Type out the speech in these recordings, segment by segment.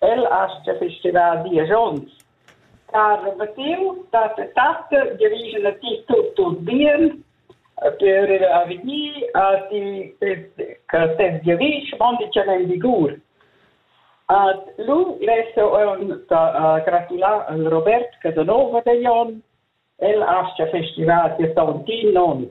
El astga festivar diesch onns. Ha rebattiu tatta tatta gerigen a ti tut tut bien per a vegnir a ti che tes gerisch mondi tschanei vigur. Ad lu lesso on gratular al Robert Casanova de Jon el astga festivar sia tontin non.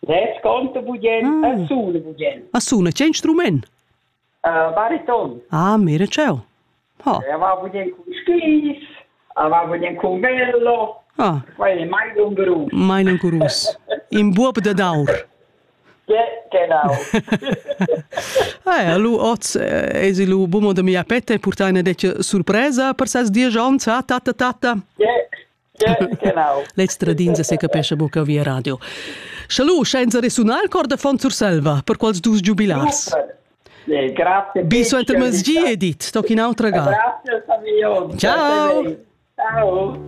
Retschonte bugen e sule bugen. A suna che instrument? Bariton. Ah, mira ciao. Ha. Aveva bugen con skis, aveva bugen con vello. Ah. Quai è mai lungerus. Mai lungerus. In buob da daur. Genau. Eh, lu oz es lu bumo da mia petta e purta una dece surpresa per ses dies ons, ha tatta tatta. Yeah. L'extradins secapescha buca via radio. Salut, senza resunar il cor da Fon Surselva per quels dus giubilars. Bi suenter mezgi edit, toc in autra ga. Grazie, Ciao. Ciao.